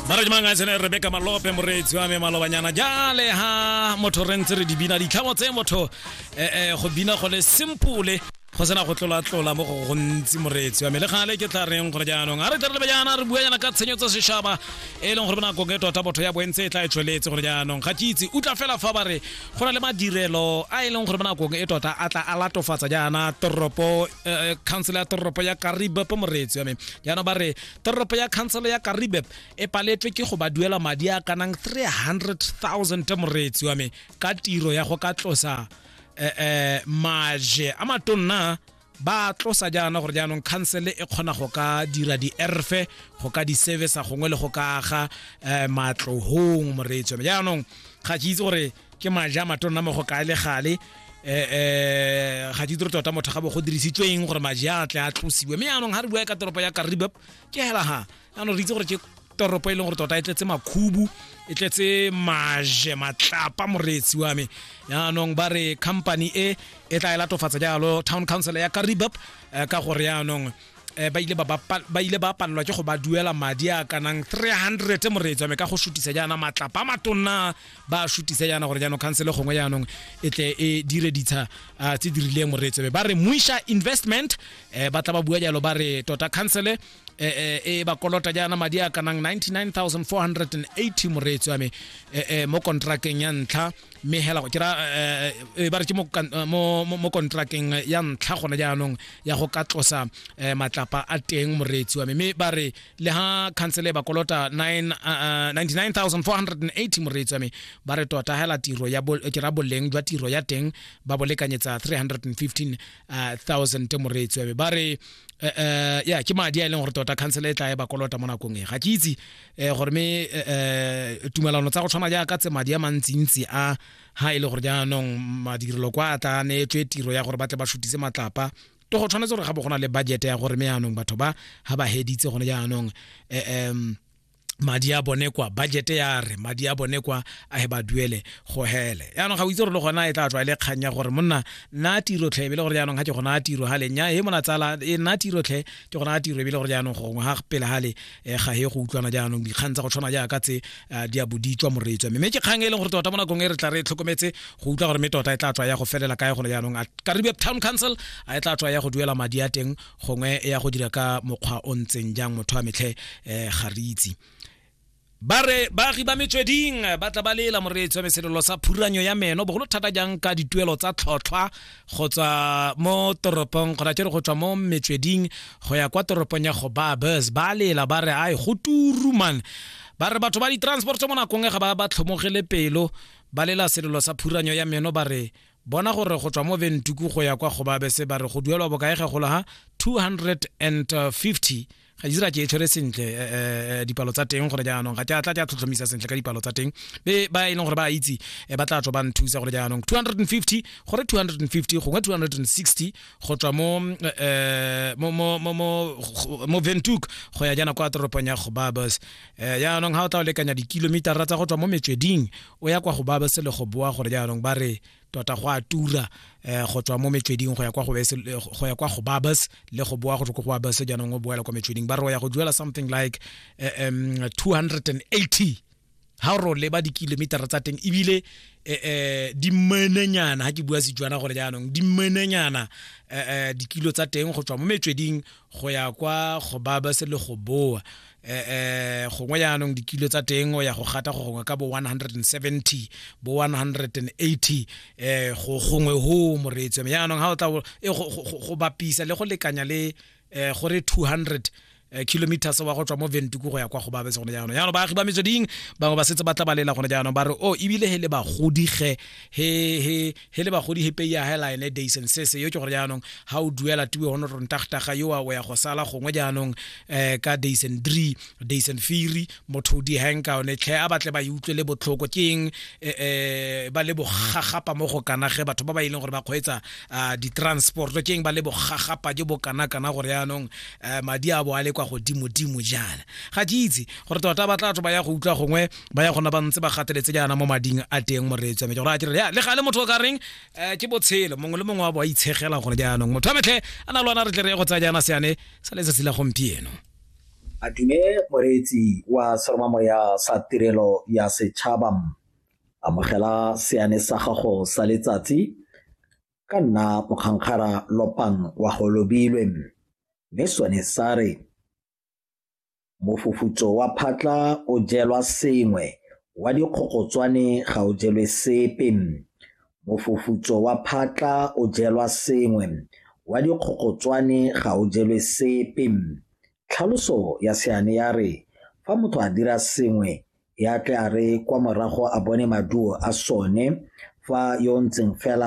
maradi mang a tsene rebeka malope moreetsi wa me malobanyana jale ha motho re ntse re di bina ditlhamo tse motho eh, eh, go bina go le simple go sena go tlola-tlola mo go gontsi moreetsi wa me le gale ke tla reng gore jaanong a re tle re lebe jaana re bua jaana ka tshenyo tsa sešaba e leng gore bonakong e tota botho ya boentse e tla e tsweletse gore jaanong ga ke itse utlwa fela fa ba re go na le madirelo a e leng gore bonakong e tota a tla a latofatsa jaana toropo eh, eh, council ya toropo ya karibe po moreetsi wa me jaanong ba re toropo ya khansele ya karibep e paletswe ke go ba duela madi a kanang 300,000 moreetsi wa me ka tiro ya go ka tlosa eh, eh, maje a matonna ba tlosa jaana gore jaanong khansele e kgona go ka dira di-erfe go ka di-service gongwe le go ka aga um matlogong moreetsi wa me jaanong ga ke itse gore ke maja a matonna mo go kae le gale eh eh ga di tota motho ga bo go dirisitswe eng gore maji a tle a tlosiwe mme yaanong ga re bua ka toropo ya karibab ke hela ha yaanong re itse gore ke toropo e leng gore tota e tletse makhubu e tletse maje matlapa moreetsi wa me yaanong ba re company e e tla e latofatsa jalo town council ya karibab eh, ka gore yaanong eh, ba ile ba ba pa- ba ile ba palelwa ke go ba duela madi a kanang 300 moreetsi wa me ka go sutisa jaana matlapa a matonna ba shutisa yana gore jaanong khansele gongwe jaanong e tle e dire ditsha ah, tse di rileng moreetsebe ba re muisha investment eh, ba tla ba bua jalo ba re tota khansele eh, eh, e ba kolota jaana madi a kanang 99480 moreetsi wa me eh, eh, mo kontrakeng ya ntlha mme hela go kira eh, eh, ba re ke mo kan- eh, mo- mo- mo kontrakeng ya ntlha gone jaanong ya go ka tlosa eh, matlapa a teng moreetsi wa me mme ba re le ha khansele ba kolota 99480 moreetsi wa me ba re tota hela tiro ya ke ra boleng jwa tiro ya teng ba bo lekanyetsa 315000 moreetsi wa me ba re eh, eh, ya ke madi a e leng gore tota khansele e tla e ba kolota mo nakong e ga ke itse eh, gore me tumelano tsa go tshwana jaaka tse madi a mantsintsi a ha e le gore jaanong madirelo kwa a tla neetswe tiro ya gore ba tle ba shutise matlapa to go tshwanetse gore ga bo go na le budget ya gore me yaanong batho ba ga ba heditse gone jaanong um madi a bone kwa budget ya re madi a bone kwa a he ba duele go hele yaanong ga o itse gore le gona e tla tswa e le kgang ya gore monna nna tiro tlhe ebile gore jaanong ga ke gona tiro ga lenya e mona tsala e nna tiro tlhe ke gona tiro ebile gore jaanong gongwe ga pele ga le e ga e go utlwana jaanong dikgang tsa go tshwana jaaka tse di a bodi tswa moreetswa mme ke kgang e leng gore tota mo nakong e re tla re tlhokometse go utlwa gore mme tota e tla tswa ya go felela kae gone jaanong karibe town council a e tla tswa ya go duela madi a teng gongwe ya go dira ka mokgwa o ntseng jang motho wa metlhe um ga re itse ba re baagi ba metsweding ba tla ba lela moreetsi wa meselelo sa phuranyo ya meno bogolo thata jang ka dituelo tsa tlhotlhwa go tswa mo toropong kgona ke re go tswa mo metsweding go ya kwa toropong ya go ba bus ba lela ba re ai go turu man ba re batho ba di-transport mo nakong e ga ba ba tlhomogele pelo ba lela selelo sa phuranyo ya meno ba re bona gore go tswa mo ventuku go ya kwa go ba bese ba re go duelwa bokaege golo ha 250 ga isra ke e tshwere sentle eh, eh, eh, dipalo tsa teng gore jaanong ga tla tla tlhotlhomisa sentle ka dipalo tsa teng be ba e leng gore ba itse ba tla tswa ba nthusa gore jaanong 250 gore 250 gongwe 260 go tswa mo mo mo mo ventuk go ya jaana kwa toropong ya go babas jaanong ga o tla o lekanya dikilomitara tsa go tswa mo metsweding o ya kwa go babas le go boa gore jaanong ba re tota go a tura um go tswa mo metsweding go ya kwa go ya kwa go babas le go boa go tswa go babas jaanong o boela kwa metsweding ba re o ya go duela something like um 280 ha ro leba dikilometara tsa teng ebile eh, eh, di menenyana ha ke bua sejwana gore jaanong di menenyana eh, dikilo tsa teng go tswa mo metsweding go ya kwa go baba se le go boa eh, eh gongwe jaanong dikilo tsa teng o ya go gata go gongwe ka bo 170 bo 180 eh go gongwe ho moreetso mme jaanong ga o tla eh, go bapisa le go lekanya le eh, gore 200 eh, kilometers wa go tswa mo ventuku go ya kwa go babe se gone jaanong jaanong baagi ba metsweding bangwe ba setse ba tla balela gone jaanong ba re o oh, ebile he le bagodi ge he he he le bagodi he pei ya hela ene days and sese yo ke gore jaanong ha o duela tiwe ho notron tagtaga yo wa ya go sala gongwe jaanong eh ka days and three days and firi motho di hanka one tlhe a batle ba e utlwe le botlhoko ke eng eh, eh ba le bogagapa mo go kana ge batho ba ba ileng e gore ba kgweetsa ah, di transport ke eng ba le bogagapa jo bo kana kana gore jaanong eh, madi a bo a le kwa godimo dimo jaana ga ke itse gore tota ba tla batho ba ya go utlwa gongwe ba ya gona ba ntse ba gateletse jaana mo mading a teng moreetswa me ke gore a kere ya le gale motho o ka reng um ke botshelo mongwe le mongwe wa bo a itshegela gore jaanong motho a metlhe a na le ona re tle re ye go tsaya jaana seane sa letsatsi la gompieno a dume moreetsi wa seromamoya sa tirelo ya setšhaba amogela seane sa gago sa letsatsi ka nna mokgankgara lopang wa go lobilwe mme sone sa re Mofufutso wa phatla o jelwa sengwe, wa dikgogotswane ga o jelwe sepe. Mofufutso wa phatla o jelwa sengwe, wa dikgogotswane ga o jelwe sepe. Tlhaloso ya seane ya re, fa motho a dira sengwe, e a tle a re kwa morago a bone maduo a sone, fa yo o ntseng fela